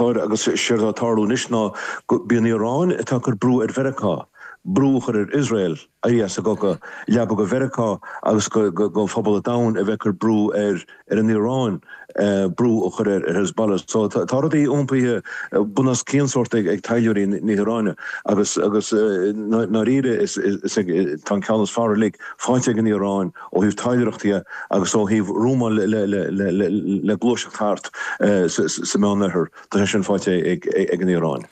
agus séard tá ag tarlú anois ná gurb í an Iaráin atá ag cur brú ar Mheiriceá, brú a chur ar Iosrael éirí as an gcogadh, leaba go Mheiriceá agus go phobal an domhain a bheith ag cur brú ar an Iaráin brú a chur ar Hezbollah. So tá rudaí iompaithe bun os cionn sórt ag taidhleoirí na hIaráine agus, agus i ndáiríre tá an ceann is fearr uilig faighte ag an Iaráin ó thaobh taidhleoireachta dhe agus ó thaobh rúm le gluaiseacht thart sa Mheán-Oirthear, tá sé sin faighte ag an Iaráin.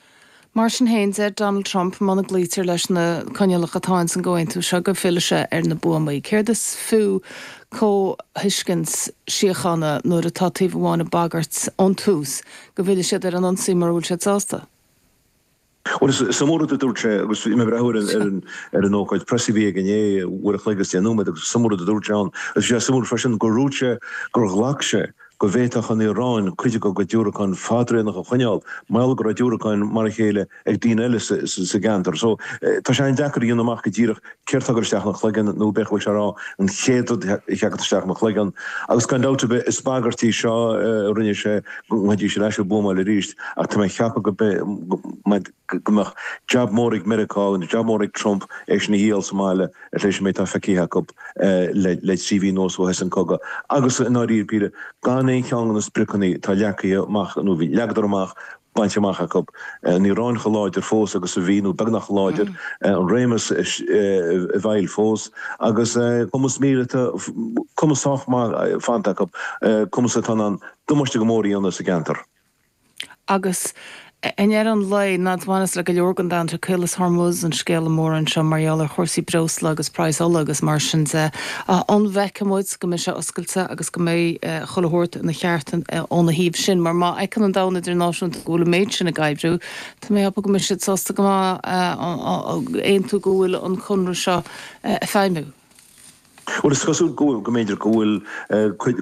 Mar sin féin, deir Donald Trump muna gcloítear leis na coinníollacha atá ins an gcomhaontú seo go bhfillfidh sé ar na buamaí. Céard is fiú comhthuiscint síochána nuair atá taobh amháin ag bagairt ón tús go bhfillfidh siad ar an ionsaí mura bhfuil siad sásta? Bhuel, is iomaí rud a dúirt sé agus bhí mé ag breathnú ar an, ar an, ar an ócáid preas a bhí aige inné, uair a chloig agus deich nóiméad agus is iomaí rud a dúirt sé ann. Agus bhí sé suimiúil freisin gur dhúirt sé gur ghlac sé go bhféadfadh an Iaráin cuid de dhiúracáin fadraonacha a choinneáil mar gheall go raibh diúracáin mar a chéile ag daoine eile sa, sa, sa gceantar. So, tá sé an-deacair a dhéanamh amach go díreach céard a thagann isteach ina chloigeann, nó b'fhéidir go bhfuil sé ag rá an chéad rud a theagann isteach ina chloigeann, agus gan dabht ar bith is bagairt í seo a rinne sé go mbeidís ar ais ag buamáil arís, ach tá mé ag ceapadh go mbeidh, go mbeadh jab mór ag Meiriceá, jab mór ag Trump é sin a dhíol sa mbaile tar éis an méid atá feicthe acu le trí mhí anuas ó thosaigh an cogadh, agus i ndáiríre péire gan aon cheann de na spriocanna atá leagtha amach, nó leagadar amach bainte amach acu. An Iaráin chomh láidir fós agus a bhí, nó beagnach chomh láidir, an réimeas i bhfeighil fós, agus cumas míleata, cumas sách maith fanta acu, cumas atá in ann damáiste go mór a dhéanamh sa gceantar. Agus i ndeireadh an lae, mar a bhaineas le go leor den domhan, is é Caolas Hormuz an scéala mór anseo mar gheall ar chúrsaí breosla agus praghas ola agus mar sin de. An bhfeicfidh muid. go mbeidh sé oscailte agus go mbeidh chuile shórt ina cheart óna thaobh sin, mar má fheiceann an domhan idirnáisiúnta go bhfuil an méid sin ag oibriú, tá mé ag ceapadh go mbeidh siad sásta go maith aontú go bhfuil an Conradh seo ag feidhmiú. Bhuel, is cosúil go mb'fhéidir go bhfuil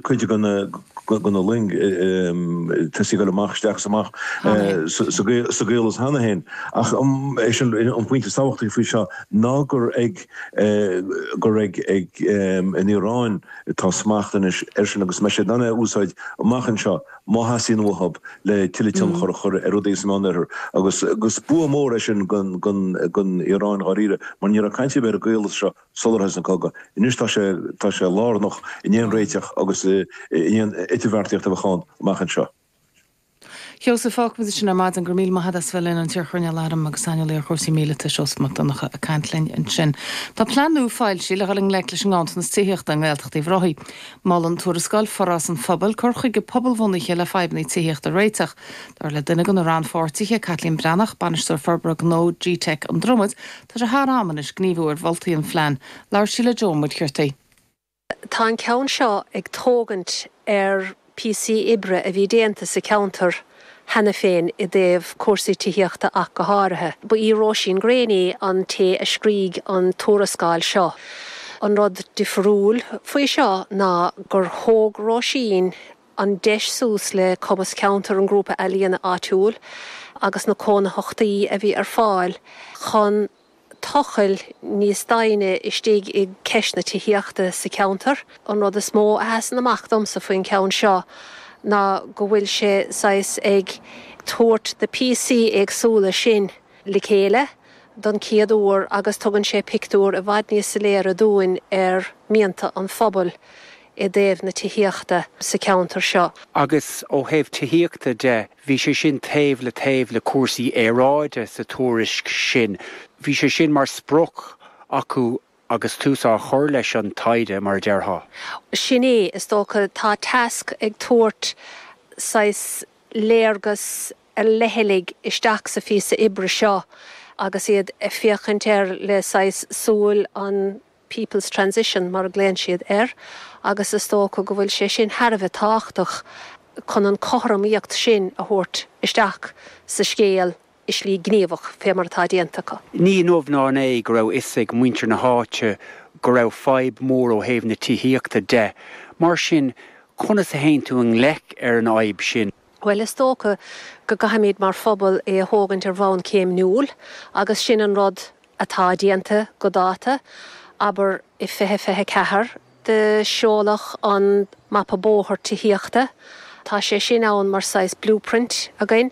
cuid de na loing tosaithe ag dul amach isteach is amach sa gcaolas cheana féin, ach is é an pointe is tábhachtaí faoi seo ná gur ag. gur ag an Iaráin atá smacht anois air sin agus beidh sé in ann é a úsáid amach anseo má theastaíonn uathu le tuilleadh tionchair a chur ar rudaí sa Mheánoirthear. Agus is bua mór é sin don Iaráin dháiríre mar ní raibh caint ar bith ar an gcaolas seo sular thosaigh an cogadh. Anois tá sé lárnach in aon réiteach agus in aon idirbheartaíocht a bheadh ann amach anseo. Sheosaimh, fágfaidh muid sin ar maidin. Go raibh míle maith agat as a bheith linn, an t-iarChoirnéal Airm agus saineolaí ar chúrsaí míleata, Seosamh Mac Donncha, ag caint linn ansin. Tá plean nua foilsithe le dhul i ngleic leis an nganntanas tithíochta i nGaeltacht Uíbh Ráthaigh. Molann Tuarascáil Forás an Phobail cur chuige pobalbhunaithe le fadhbanna tithíochta a réiteach. Dar le duine de na rannpháirtithe, Caitlín Breathnach, Bainisteoir Forbartha Gnó gteic na Dromoda, tá sé thar am anois gníomhú ar mholtaí an phlean. Labhair sí le Dáithí de Mórdha. Tá an ceann seo ag tógaint ar phíosaí oibre a bhí déanta sa cheantar cheana féin i dtaobh cúrsaí tithíochta ach go háirithe. Ba í Róisín Greaney an té a scrígh an tuarascáil seo. An rud difriúil faoi seo ná gur thóg Róisín an deis suas le cumas cheantar an Ghrúpa Ealaíona áitiúil agus na cónaitheachtaí a bhí ar fáil chun a. tochailt níos doimhne istigh i gceist na tithíochta sa cheantar. An rud is mó a sheasann amach domsa faoin cheann seo ná go bhfuil sé saghas ag tabhairt na píosaí éagsúla sin le chéile don chéad uair agus tugann sé pictiúr i bhfad níos soiléire dúinn ar mhianta an phobail i dtaobh na tithíochta sa cheantar seo. Agus ó thaobh tithíochta de, Bhí sé sin taobh le taobh le cúrsaí aeráide sa tuairisc sin. Bhí sé sin mar sprioc acu agus tús á chur leis an taighde, mar a déarfá. Sin é, is dócha. Tá Tasc ag tabhairt saghas léargas ar leithligh isteach sa phíosa oibre seo agus iad ag féachaint air le saghas súil an. People's Transition, mar a ghlaonn siad air, agus is dócha go bhfuil sé sin thar a bheith tábhachtach chun an chothromaíocht sin a thabhairt isteach sa scéal i slí ghníomhach, fé mar atá déanta acu. Ní inniu ná inné go raibh fhios ag muintir na háite go raibh fadhb mhór ó thaobh na tithíochta de. Mar sin, conas a théann tú i ngleic leis an fhadhb sin? Bhuel, is dócha go gcaithfimid mar phobal é a thógaint ar bhonn céimniúil agus sin an rud atá déanta go dáta. Abair i 2024 do seoladh an Mapa Bóthar Tithíochta. Tá sé sin ann mar saghas blueprint againn